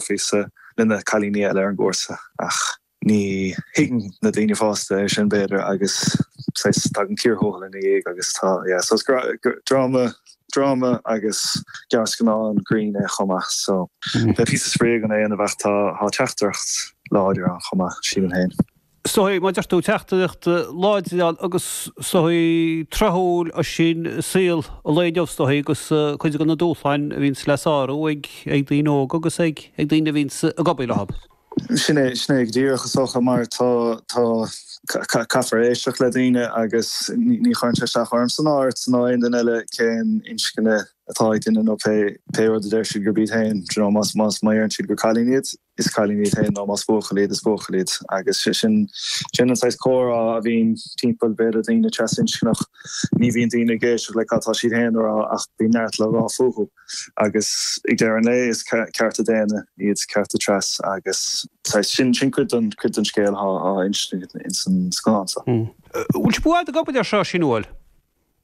Críostaí le na cailíní eile ar an gcúrsa ach ní thuigeann na daoine fásta é sin b'fhéidir agus saghas tagann cíor thuathail ina dhiaidh agus tá yeah so is dra dráma agus gearrscannán grinn é chomh maith so beidh píosa spraoi ann ach an am céanna tá tá teachtaireacht láidir ann chomh maith sílim féin. so mar a deir tú teachtaireacht láidir ann agus is dóichí tráthúil ansin i saol an lae inniu is dóichí agus cuid de na dúshláin a bhíonns le sárú ag daoine óga agus ag daoine a bhíonns ag obair leo. Sin é, sin é go díreach is dócha mar tá, tá, caithfear éisteacht le daoine agus ní chuireann sé isteach orm orm-sa ná aon duine eile cén inscne atá ag duine nó pé, pé rud a deir siad gurb iad féin, do you know, más, más má deireann siad gur cailín iad, is cailín iad féin nó más buachaill iad is buachaill iad agus sin sin an saghas comhrá a bhíonn timpeall b'fhéidir daoine trasinscneach ní bhíonn daoine ag éisteacht le cad atá siad féin a rá ach bíonn neart le rá fúthu agus ag deireadh an lae is cearta daonna iad cearta tras agus saghas sin sin cuid den cuid den scéal atá istigh ins an scannán so. Bhfuil sibh buartha go bhfuil ar seo sin uail?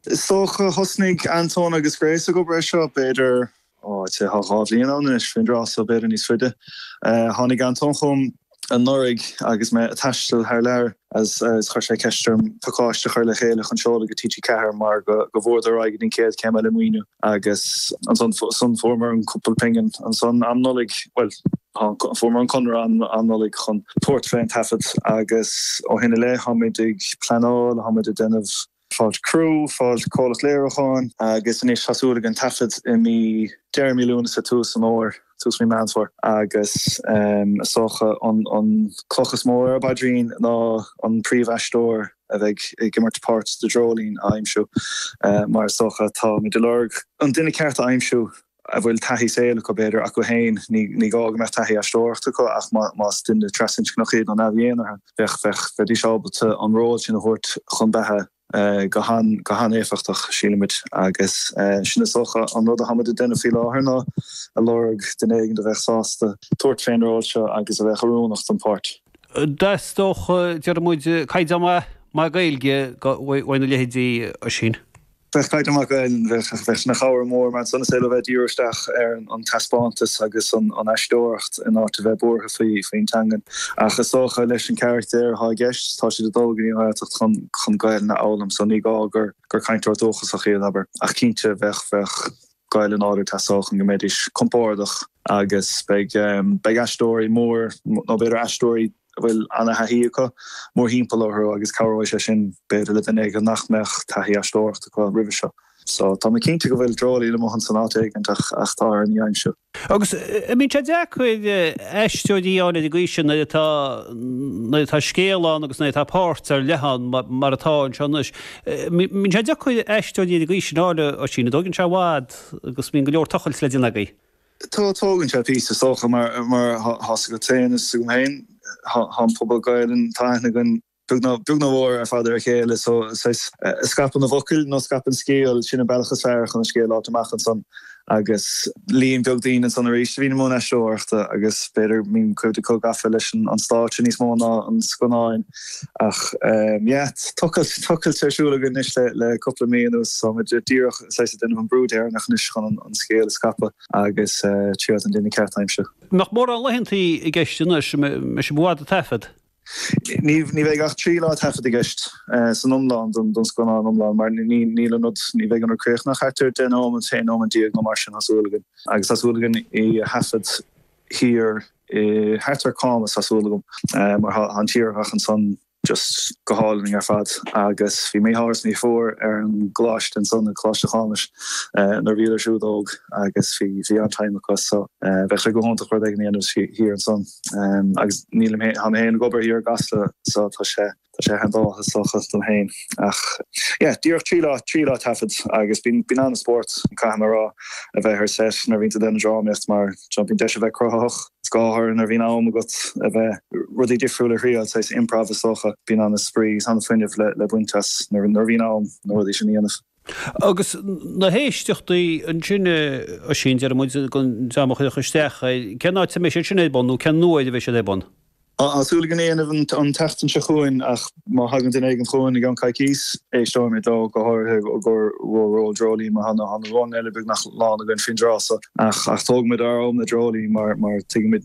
Is dócha thosnaigh Antóin agus Grace ag obair ar seo, b'fhéidir, ó, thá thá dhá bhliain ann anois, faoin dtráth so, b'fhéidir níos faide. Tháinig Antóin chugam anuraidh agus mé a' taisteal thar lear agus chuir sé ceist orm pacáiste a chur le chéile chun seoladh go TG4 mar go go rabhadar ar aghaidh don chéad chéim eile maoiniú agus ansan fuaireamar an cúpla pingin ansan um Nollaig, bhuel, fuaireamar an conradh um um Nollaig chun tabhairt fé an taifead agus ó shin i leith táimid ag pleanáil, táimid ag déanamh. fáil criú, fáil comhlacht Léiriúcháin. Agus anois tá súil againn taifead i mí deireadh mí Lúnasa, tús an Fhómhair, tús mí Meán Fómhair. Agus is dócha an cloch is mó ar ár bpaidrín ná an príomhaisteoir a bheidh ag imirt páirt de Dreoilín a aimsiú mar is dócha táimid ag lorg an duine ceart a aimsiú. a bhfuil taithí saoil acu, b'fhéidir, acu féin, ní gá go mbeadh taithí aisteoireachta acu ach más duine trasinscneach iad nó neamh-dhénártha, bheidís ábalta an ról sin a thabhairt chun beatha go han-éifeachtach, sílimid, agus sin is dócha an rud athá muid ag déanamh faoi láthair ná a lorg duine éigin a bheadh sásta tabhairt fén ról seo agus a bheadh oiriúnach don pháirt. Theastódh, déarfaimid, caighdeán maith Gaeilge uaidh nó a leithéid sin. Bheadh caighdeán maith Gaelainn bheadh sé ina chabhair mhór mar ansan is féidir leo a bheith ag díriú isteach ar an taispeántas agus an aisteoireacht in áit a bheith buartha faoin teangain. Ach is dócha leis an gcarachtar atá i gceist tá siad ag dul go dtí an Ghaeltacht chun Gaelainn a fhoghlaim so ní gá gur gur cainteoir dúchasach iad, abair. Ach cinnte bheadh bheadh Gaelainn láidir ag teastáil chun go mbeidís compórdach agus beidh beidh aisteoirí mór nó b'fhéidir aisteoirí a bhfuil an-taithí acu mórthimpeall orthu agus cabhróidh sé sin, b'fhéidir, le duine éigin nach mbeadh taithí aisteoireachta acu roimhe seo. So, tá mé cinnte go bhfuil dreoilín amuigh ansan áit éigin ach tá orainn é a aimsiú. Agus bíonn sé deacair aisteoirí a fháil ar an gcaoi sin nuair atá, nuair atá scéal ann agus nuair atá páirt ar leith ann mar atá anseo anois. Bíonn sé deacair aisteoirí ar an gcaoi sin a fháil, Oisín, an dtógann sé i bhfad agus bíonn go leor tochailt le déanamh agaibh. Tógann sé píosa is dócha mar atá a fhios agat féin is agam féin tá an pobal Gaelainne, tá aithne againn beag ná mór ar fad ar a chéile so scaipeann an focal nó scaipeann scéal, sin an bealach is fearr chun an scéal a fháilt amach ansan agus líon beag daoine ansan arís a bhíonn i mbun aisteoireachta agus b'fhéidir bíonn cuid acu gafa leis an stáitse níos mó ná an scannáin. Ach yeah, tochailt, tochailt ar siúl againn anois le cúpla mí anuas so táimid díreach, is ea, ag déanamh an brú deireanach anois chun an scéal a scaipeadh agus triail an duine ceart a aimsiú. An mbeadh mórán laethanta i gceist anois, ní bheidh sibh i bhfad ag taifead. Ní bheidh ach trí lá taifeadta i gceist san iomlán don scannán iomlán mar níl an rud, ní bheidh an rud críochnaithe ach thart ar deich nóiméad nó aon nóiméad déag nó mar sin tá súil againn agus tá súil againn í a thaifead. thiar i, thart ar Camas tá súil agam mar tá an tírdhreach ansan just go hálainn ar fad agus bhí mo dheartháir is mo dheirfiúr ar an gColáiste ansan i Coláiste Chamuis nuair a bhíodar siúd óg agus bhí bhí an-time acu so bheadh sé go hiontach rud éigin a dhéanamh thiar ansan agus nílim fhéin tá mé fhéin ag obair thiar i gCasla so tá sé Tá sé handy enough is dócha dom féin ach yeah, díreach trí lá, trí lá taifead agus bíonn, bíonn an-spórt, caithfidh mé a rá, a bheith ar set nuair a bhíonn tú ag déanamh drámaíocht mar seo, bíonn deis a bheith cruthaitheach, go háirithe nuair a bhíonn am agat a bheith rudaí difriúil a thriail, is é is improv is dócha, bíonn an-spraoi is an-fuinneamh le, le baint as nuair, nuair a bhíonn am na rudaí sin a dhéanamh. Agus na héisteachtaí ansin, Oisín, deireann muid, go ndéanfaidh siad éisteacht, cén áit a mbeidh siad sin ar bun nó cén uair a bheidh siad ar bun? Tá súil againn é a dhéanamh an tseachtain seo chugainn ach má thagann duine éigin chugainn i gceann coicís, éisteoimid leo, go háirithe i gcomhair ról Dreoilín mar tá na rólanna eile beagnach lán againn faoin dtráth seo. Ach tógfaimid ár am le Dreoilín mar tuigimid